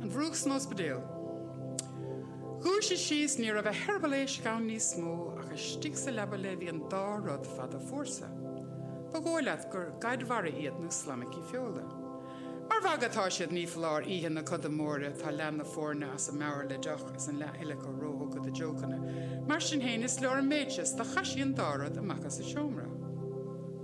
An Mhurúch san ospidéal. Dhúisigh sí is ní raibh a heireaball éisc ann níos mó, ach istigh sa leaba léi bhí an dá rud fada fuar so. Ba dhóigh leat gur gaid mhara iad nó slaimicí feola. Mar mhagadh atá siad, ní foláir, oíche na coda móire, tá leath na foirne as a meabhair le deoch is an leath eile acu róthugtha do jokeanna. Mar sin féin, is leor an méid seo, is do chaith sí an dá rud amach as an seomra.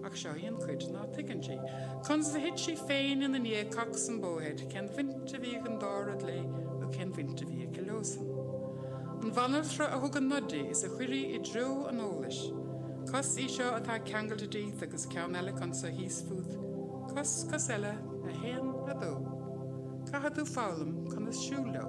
Ach seo í an chuid ná tuigeann sí. Conas a thit sí féin ina ndiaidh cocs-um-bo-head, cén bhaint a bhí ag an dá rud léi nó cén bhaint a bhí aici leosan. An bhanaltra a thug an nod di is a chuir í i dtreo an eolais. Cos í seo atá ceangailte díot agus ceann eile acu anseo thíos fút. Cos, cos eile, a haon, a dó. Caithfidh tú foghlaim conas siúl leo.